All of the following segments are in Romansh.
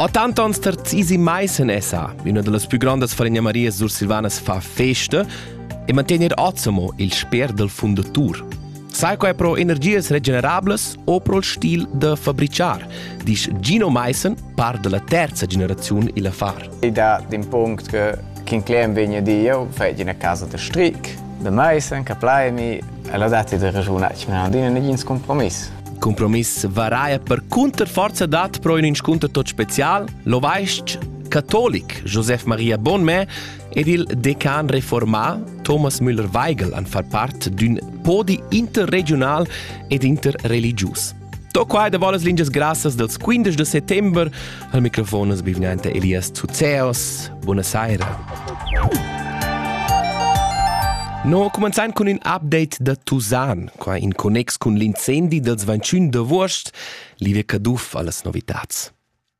A tant ans terzisi mai sen esa, üna da las plü grandas falegna Marias sursilvanas fa festa e mantegner Azamo il sper dal fundatur. Sai quai pro energias regenerables o pro il stil da fabriciar, disch Gino Meissen, par da la terza generaziun illa far. Id ha d'un punct che quin clem vegna Dio fai ina casa da stric da Meissen, che plaimi, e l'ha dati da ragiunare, ma non dina negin compromiss. Compromiss varaia percunter forza dat pro in inscunter tot special, lo vaist catolic Josef Maria Bonmè ed il decan reformà Thomas Müller-Weigel han far part d'ün podi interregional ed interreligius. To quai da volas lingias grassas dels 15 de settember Al microfon es bivgnante Elias Zuzeos. Buona saira. No, comenzain cun ün update da Tusan, qua in connex cun l'incendi dels 21 d'avuost, Livia Caduff a las novitats.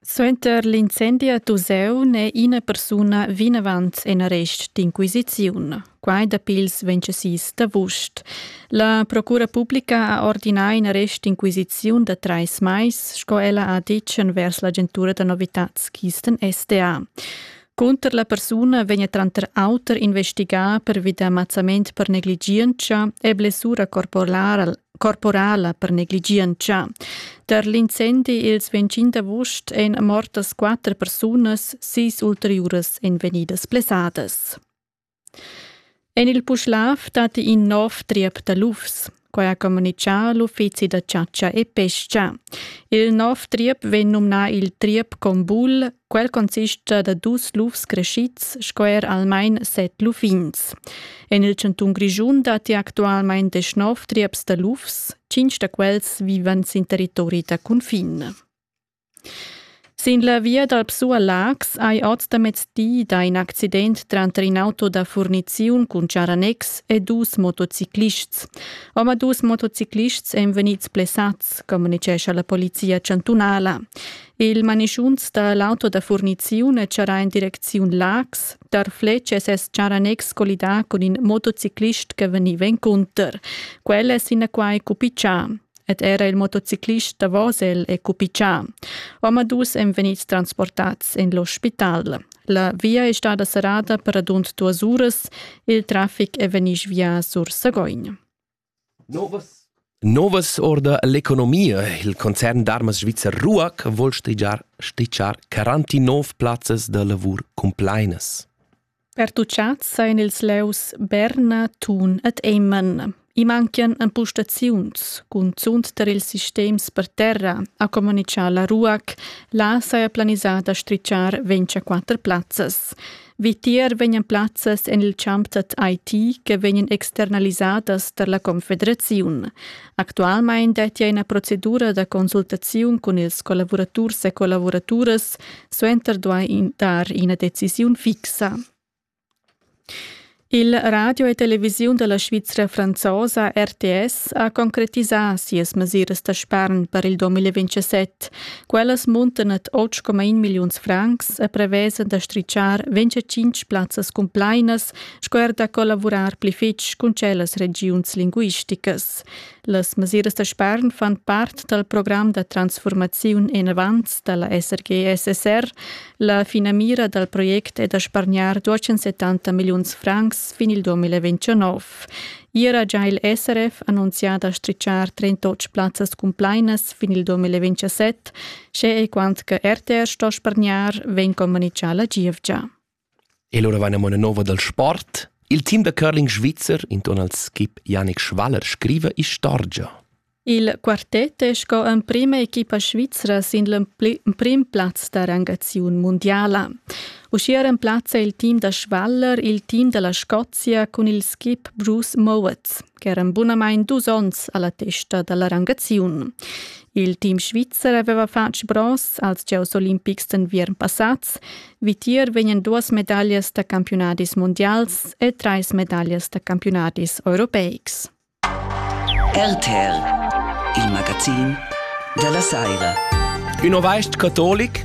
Suenter l'incendi a Tuseu n'è ina persuna vinavant en arrest d'inquisiziun. Quai dapi ils 26 d'avust. La Procura publica ha ordinà in arrest d'inquisiziun da trais mais, sco ella ha ditg envers l'agentura da novitads Kisten SDA. Cunter la persuna vegn tranter auter investigà pervi da mazzament per negligientscha e blessura corporal corporala per negligientscha. Per l'incendi ils 25 d'agost èn mortas quatter persunas, sis ulteriuras èn vegnidas blessadas. En il Puschlav datti in nov triep da lufs. Quai ha communitgà l'uffizi da chatscha e pestga. Il nov triep vegn numnà il triep Combul. Quel consista da dus lufs crescids sco er almain set luffins. En il chantun Grischun datti actualmain desch nov trieps da lufs. Tschintg da quels vivan sin territori da cunfin. Sin la via dal Psu a Laax hai oz da mezdi dà in accident tranter in auto da furniziun cun charanex e dus motociclists. Omadus motociclists èn vegnids blessads, communitgescha la polizia chantunala. Il manischunz da l'auto da furniziun è charrà en direcziun Laax. Tar Fletsch è ses charanex collidà cun in motociclist che vegniva encunter. Quel è sinaquai cupichà. ed era il motociclist Davosel e cupichà. Omadus èn vegnids transportads en l'ospital. La via è stada serrada per radund duas uras. Il traffic è vegnì via sur Sagogn. Novas Novas orda l'economia. Il concern d'armas svizzer RUAC vuol stigiar, stichar 49 plazzas da lavur cumplainas. Pertuchats sajan ils levs Berna, Thun ed Emmen. I manchian empustaziuns, cunzunt tar ils sistems per terra, ha communitgà la RUAC. Là saja planisà da stritschar 24 plazzas. Vitier vegnan plazzas en il champ dad IT che vegnan externalisadas tar la Confederaziun. Actualmein detti ina procedura da consultaziun cun ils collavuraturs e collavuraturas, suenter duai dar ina decisiun fixa. Il radio e televisiun della Svizra franzosa RTS ha concretisà sias mesiras da spern per il 2027. Quellas muntan ad 8,1 milliuns francs e prevesan da strichar 25 plazzas cumplainas sco er da collavurar pli fitg cun tschellas regiuns linguisticas. Las mesiras da spern fan part dal program da transformaziun enavant da la SRG-SSR. La finamira dal project è da spargnar 270 milliuns francs fin il 2029. Ier ha già il SRF annunziato a stricciar 38 plazzas cumplainas fin il 2027, sche e quant che RTR sto spargnar, vegn communicato la giovgia. E lura vaina mo üna nouva dal sport. Il team da curling svizzer intuorn al skip Janik Schwaller scriva istorgia. Il quartet è sco emprima equipa svizra sin l'emprim plaz da rangaziun mundiala. Uschia remplazza il team da Schwaller il team da la Scozia cun il skip Bruce Mowatz. ch'eran bunamain dus onns a la testa da la rangaziun. Il team svizzer aveva fatg bronz als gieus olimpics d'enviern passads. Vitier vegnan duas medaglias da campiunadis mundials e trais medaglias da campiunadis europeics. RTL, il magazin della Saira. Ün ovaist catolic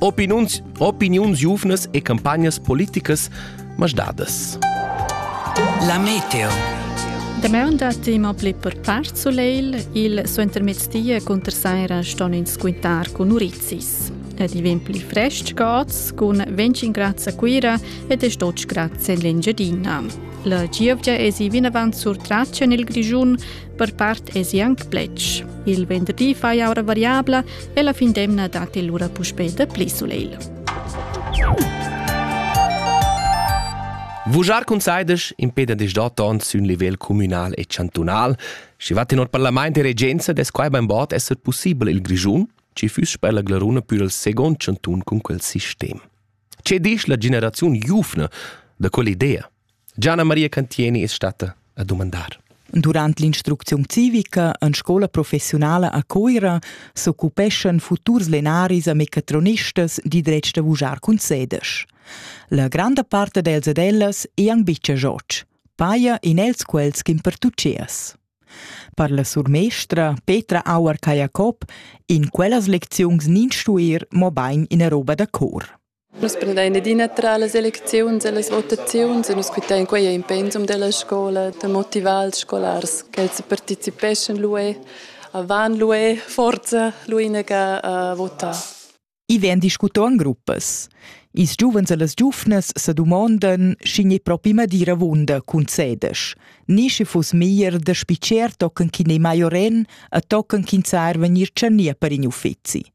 opiniuns, opiniuns giuvnas e campagnas politicas masdadas. La meteo. Damaun da tema pli per part soleil, il suentermezzdia cunter saira ston ins quintar cun urizis. Ed i vegn pli frestg gods cun 25 grad a Cuira ed es 12 grad en l'Engiadina. La gievgia es i vinavant sur Traccia nel Grischun, Per part esi anc pletg. Il venderdi fai aura variabla e la fin d'emna datti lura puspè da pli sulegl. Vujar cun saides impeda dis d'otton sün livel communal e chantunal. Schi va tenor parlament e regenza des quai beinbod esser possibel il Grischun, ci füss per la Glaruna pür il second chantun cun quel sistem. Ce disch la generaziun giufna da quell'idea? Gianna Maria Cantieni es statta a dumandar. Durant l'instrucziun civica en scola professionala a Cuira s'occupeschan futurs lenaris a meccatronistas di dretg da vujar cun sedesch. La granda part dels ed ellas è anc bicia gioc, paia in els quels ch'in pertuccias. Per la surmestra Petra Auer-Kajakop in quellas lecziuns nin stuir mo bain ina roba da cor. Nus prendein adina tra las elecziuns e las votaziuns e nus quitein quei ein pensum della scola da motivar ils scolars ch'els participeschan luê, a van luê forza l'uinaga a votar. I vegn discutau en gruppas. Ils giuvens e las giuvnas sa dumondan, sch'igl ei propi madira avunda cun sedesch. Ni sche fuss meglier da spitgar tochen ch'in ei mai oren e tochen ch'ins sa er vegnir tschernì per in uffizi.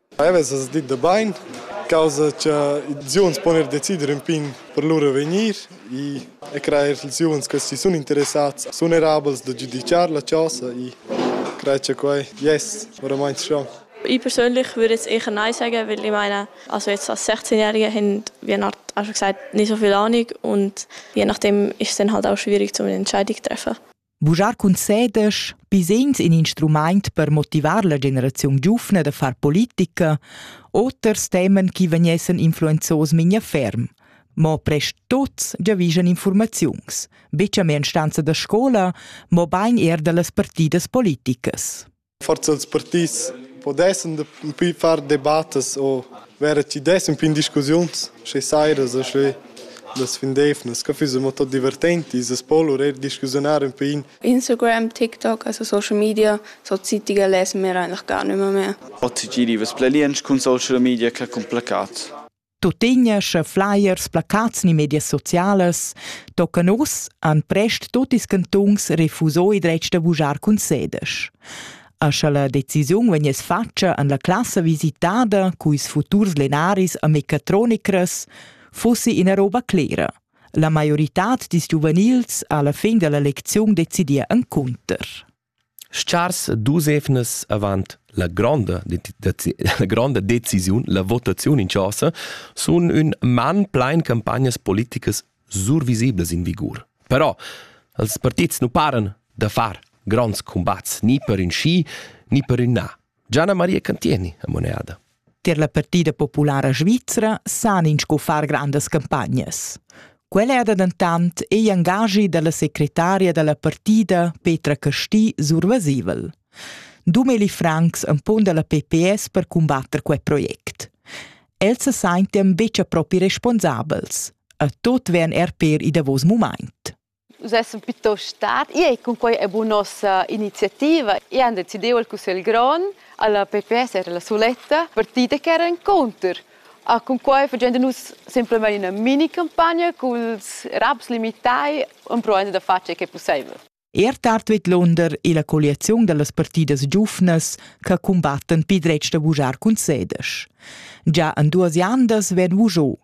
Ei vesas dit da bein, causa cha ils uonns pon er decider ün pin per lur avegnir e e crair ch'ils uonns che si sun interessats sun erabels da giudichar la chosa e crei cha quai jess oramaing schon. Ich persönlich würde jetzt eher Nein sagen, weil ich meine, also jetzt als 16-Jähriger haben wir halt auch schon gesagt, nicht so viel Ahnung und je nachdem ist es dann halt auch schwierig, um eine Entscheidung zu treffen. Bugiar cun sedesch bisegns in instrumaint per motivar la generaziun giufna da far politica, oters temen chi vegnessan influenzos mincha ferm. Mo prest tuots giavischan informaziuns, be cha mia instanza da scola, mo bain eir da las partidas politicas. Forsa ils partits pudessan dapi far debattas u vera chi dessan pin discussiuns sche sairas e sche las findeivnas ca füssa mo tot divertent i's as po lur eir discussiunar ün pin. Instagram, TikTok, also social media, so zitiger less mera largà nüma mehr. Ot sigiri vess bler liensch cun social media ca cun placat. Tuttina, sche flyers, placats ni medias socialas toccan uss, han prest tut ils cantuns refusò il dretg da vujar cun sedesch. A sche la decisiun vegniss fatga en la classa visitada culs futurs lenaris a mecatronicras, fussi ina roba clera. La maioritad dils giuvenils ha alla fin della lecziun decidia encunter. Schars dus evnas avant la gronda, la gronda decisiun, la votaziun in chasa, sun ün man plain campagnas politicas survisiblas in vigur. Però als partits nu paran da far gronds cumbats ni per ün schi ni per ün na. Gianna Maria Cantieni ha moneda. Tier la partida populara svizra san ins co far grandas campagnas. Quella era dentant igl engagi dalla secretaria dalla partida Petra Casti survasivel. Dumeli Franks empon dalla PPS per combatter quei project. Els se seinten betg propi responsabels. A tot vern er per i davos moment. Nus essan plitost stat. Ei ei cunquei è bu nossa iniziativa. Io han decidiu al cussegl grond, alla PPS era la suletta partida che era encounter. A cunquei fagend nus semplamein ina mini campagna culs raps limitai, empruendi da far tgei che pusseivel. Er tard vidlunder è la colliaziun dallas partidas giuvnas che cumbattan pil dretg da vugiar cun sedesch. Già en duas iandas vegn vugiu.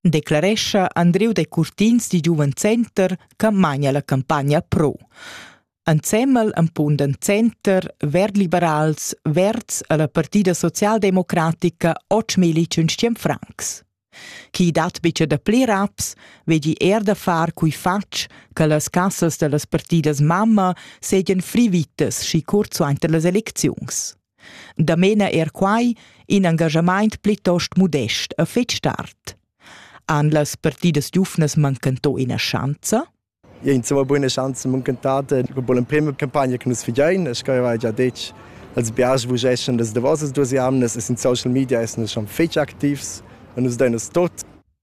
declarescha Andriu Decurtins di Giuven Center che mania la campagna pro. Ensemmel empunden Center, Verdliberals, Verds alla Partida Socialdemocratica och Militschen Franks. Chi dat bice da pli raps, vegi er da far cui fatg che las cassas dellas partidas mamma segien frivitas schi curz suenter las elecziuns. Da mena er quai in engaschamaint plitost modest e fetg tard. Han las partidas giuvnas mancantò ina schanza? Ja, insomma, buone Schanzen muncantate dopo l'emprima campagna che nus fidein, e che aveva già detto als biars vos essen das davosas duas jamnas e in social media essendo schon fetg activs e nus deinas tot